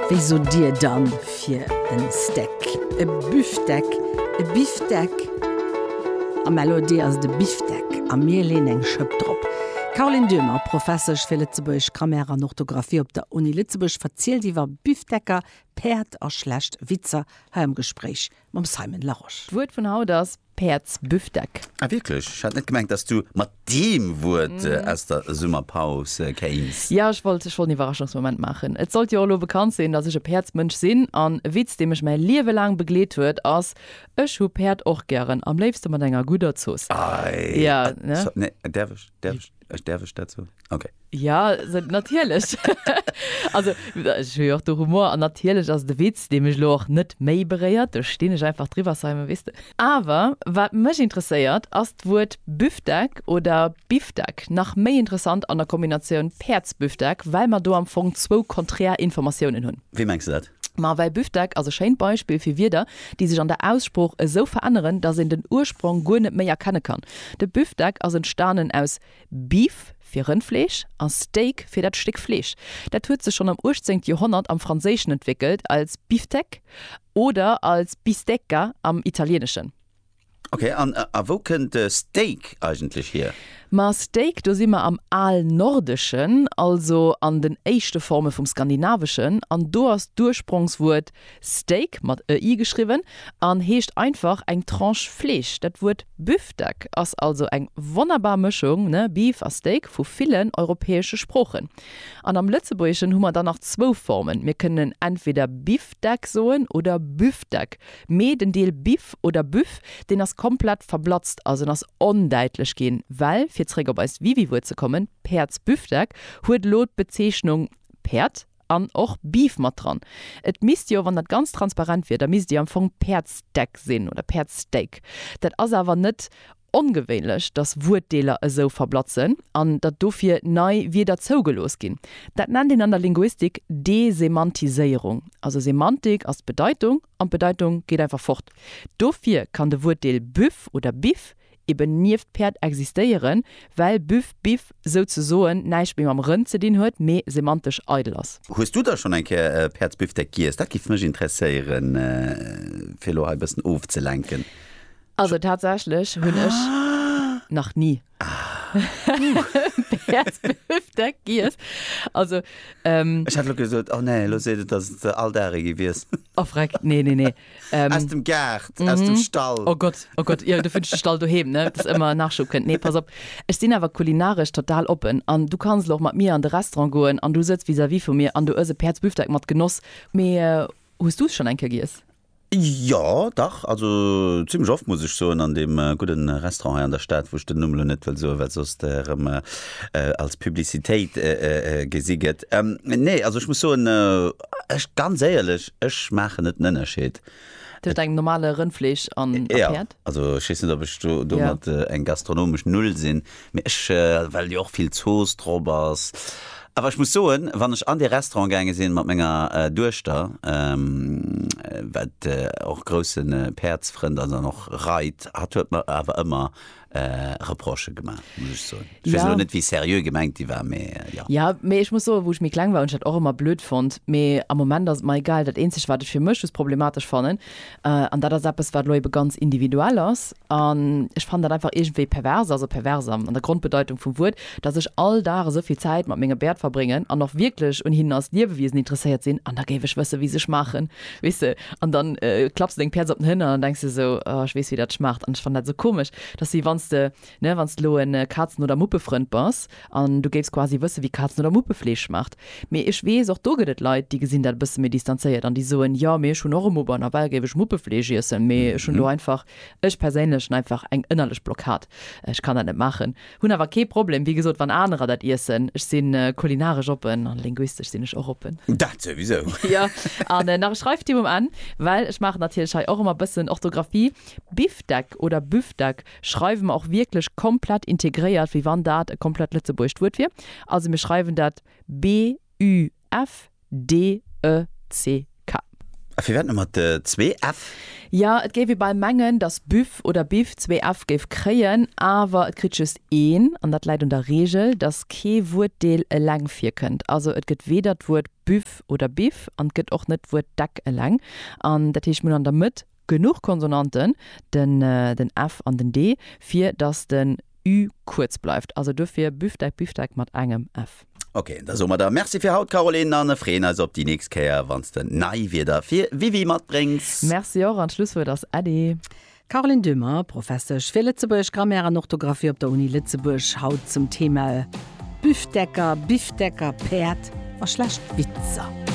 Wéi sot Dir dann fir en Steak? E Büfteck, e Bifdeck? Am LOD ass et e Bifdeck a mir leeën eng Schëpp drop. D'Caroline Döhmer, Professesch fir lëtzebuergesch Grammaire an Orthografie op der Uni Lëtzebuerg, verzielt iwwer Bifdecker, Päerd a schlecht Witzer hei am Gespréich mam Simon Larosche. D'Wuert vun haut ass. Päerds Büfdeck. Ah wierklech? Ech hat net gemengt dass du mat deem Wuert aus der Summerpaus kéins. Jo, ech wollt ech wollt en Iwwerraschungsmoment maachen. Et sollt jo och lo bekannt sinn, dass ech e Päerdsmënsch sinn. An e Witz, dee mech mäi Liewe laang begleet huet, ass, Ech hu Päerd och gären, am léifste mat enger gudder Zooss. Ei, Jo, ne? so, nee, däerf ech, däerf ech? Ech däerf ech dat soen? Okay. Ja, natierlech. also, ech hu jo och de Humor an natierlech ass et e Witz, dee mech elo och net méi beréiert. Do stinn ech einfach driwwer, Simon, weess de. Awer wat mech interesséiert, ass d'Wuert Büftek oder Biftek, nach méi interessant an der Kombinatioun Päerdsbüftek, well mer do am Fong zwou konträr Informatiounen hunn. Wéi mengs de dat? Ma well Büftek ass e schéint Beispill fir Wierder, déi sech an der Aussprooch esou veränneren, datt een den Ursprong guer net méi erkenne kann. De Büftek ass entstanen aus Beef, fir Rëndfleesch, a Steak, fir dat Stéck Fleesch. Dat huet sech schonn am uechtzéngte Joerhonnert am Franséischen entwéckelt als Biftec oder als Bistecca am Italieeneschen. Okay, an äh, a wou kënnt de Steak eigentlech hier? Ma Steak, do si mer am Alnordeschen, also an den éischte Forme vum Skandinaveschen, an do ass d'Ursprongswuert Steak, mat e i geschriwwen, an heescht einfach eng Tranche Fleesch. Dat Wuert Büftek ass also eng wonnerbar Mëschung, ne, Beef a Steak, vu villen europäesche Sproochen. An am Lëtzebuergeschen hu mer dann nach zwou Formen, mir kënnen entweder Bifdeck soen oder Büftek, Mee den Deel Biff oder Büff, deen ass komplett verblatzt, also en ass ondäitlech ginn, well, fir zréck op eist Wiwiwuert ze kommen, Päerdsbüffdeck huet elo d'Bezeechnung Päerd an och Beef mat dran. Et misst jo, wann dat ganz transparent wier, da misst et jo am Fong Päerdsdeck sinn oder Päerdssteak. Dat ass awer net Ongewéinlech, datt Wuertdeeler esou verblatzen an datt dofir nei Wierder zougelooss ginn. Dat nennt een an der Linguistik Desemantiséierung. Also Semantik ass d'Bedeitung an d'Bedeitung geet einfach fort. Dofir kann de Wuertdeel Büff oder Biff eben nieft Päerd existéieren, well Büff, Biff souzesoen näischt méi mam Rënn ze dinn huet, mee semantesch eidel ass. Hues du da schonn eng Kéier e Päerdsbifdeck giess? Dat géif mech interesséieren, fir elo hei e bëssen ofzelenken. Also tatsächlech hunn ech nach ni Päerdsbifdeck giess. Also ähm. Ech hat lo gesot, oh nee, lo seet et, dass et all Dag ee gewiess. Oh freck, nee, nee, nee. Ähm, aus dem Gaart, mhm. aus dem mhm. Stall. Oh Gott, oh Gott, ja, du findest den Stall doheem, ne? Das immer Nachschub könnt. Nee, pass op. Ich sinn aber kulinarisch total open. An du kannst auch mit mir an de Restaurant goen an du sitzt vis-à-vis -vis vu mir an du ëse Päerdsbüfteck mat Genoss. Mee, äh, hast du es schon enke giess? Jo, dach, also zimmlech oft, muss ech soen, an deem gudde Restaurant hei an der Stad, wou ech den Numm elo net wëll soen, well soss dat erëm als Publicitéit gesi gëtt. Nee, also ech muss soen, ech, ganz éierlech, ech maachen net den Ënnerscheed. Tëscht engem normale Rëndfleesch an a Päerd? Jo, also ech weess net, ob ech do domat eng gastronomesch Null sinn, Mee ech, well jo och vill Zooss drop ass. Awer ech muss soen, wann ech an dee Restaurant gaange sinn mat menger Duechter, wat och grousse Päerdsfrënd ass an och reit, hatt huet mer awer ëmmer Reprochë gemaach, muss ech soen. Ech weess elo net, wéi seriö gemengt déi war, mee jo. Jo, mee ech muss soen, wou ech méi kleng war, hunn ech dat och ëmmer blöd fonnt. Mee am Moment ass et mer egal. Dat eenzegt, wat ech fir mech just problematesch fannen, An dat ass eppes, wat elo ebe ganz individuell ass. An ech fannen dat einfach iergendwéi pervers, also pervers an der Grondbedeitung vum Wuert, datt ech all Dag esou vill Zäit mat menge Bäert verbréngen an och wierklech un hinnen als Liewewiesen interesséiert sinn, an da géif ech wësse wéi se schmaachen, weess de. An da klapps de deng Pièce op den Hënner an da denks de esou, oh ech weess wéi dat schmaacht. An ech fannen dat esou komesch, datt wéi wann s de Ne, wann s de elo e Kazen oder Muppefrënd bass an du géifs quasi wësse wéi Kazen oder Muppefleesch schmaacht. Mee ech weess, och do gëtt et Leit, déi gesinn dat e bësse méi distanzéiert an déi soen, jo, mee ech hunn och e Mupp an nawell géif ech Muppefleesch iessen, mee ech hunn do einfach, ech perséinlech hunn einfach eng ënnerlech Blockad, ech kann dat net maachen. Hunn awer kee Problem, wéi gesot, wann anerer dat iessen. Ech si kulinaresch oppen an linguistesch sinn ech och oppen. Dat souwisou! Jo, an nach e Schreiftip um Enn, well ech maachen natierlech hei och ëmmer e bëssen Orthografie, Bifdeck oder Büfdeck? schreiwe mer och wierklech komplett integréiert, wéi wann dat e komplett lëtzebuergescht Wuert wier. Also mir schreiwen dat BÜFDECK. A firwat nëmme zwee F? Jo, et géif ee bal mengen, datt Büff oder Biff zwee F géif kréien, awer et kritt just een. An dat läit un der Reegel, datt kee Wuertdeel eleng virkënnt. Also et gëtt weder d'Wuert Büff oder Biff an et gëtt och net d'Wuert Deck eleng. An dat heescht, mir hunn an der Mëtt. Genuch Konsonanten, den ë, den f an den d, fir datt den ü kuerz bleift. Also dofir Büftek, Biftek mat engem f. Ok, da soe mer der Merci fir haut, Caroline, an ë freeën eis op déi nächst Kéier, wann s de nei Wierder fir Wiwi matbréngs. Merci och, an d'Schlusswuert ass Äddi. Caroline Döhmer, Professesch fir Lëtzebuergesch Grammaire an Orthografie op der Uni Lëtzebuerg, haut zum Thema ë, Büfteker, Bifteker, Päerd a schlecht Witzer.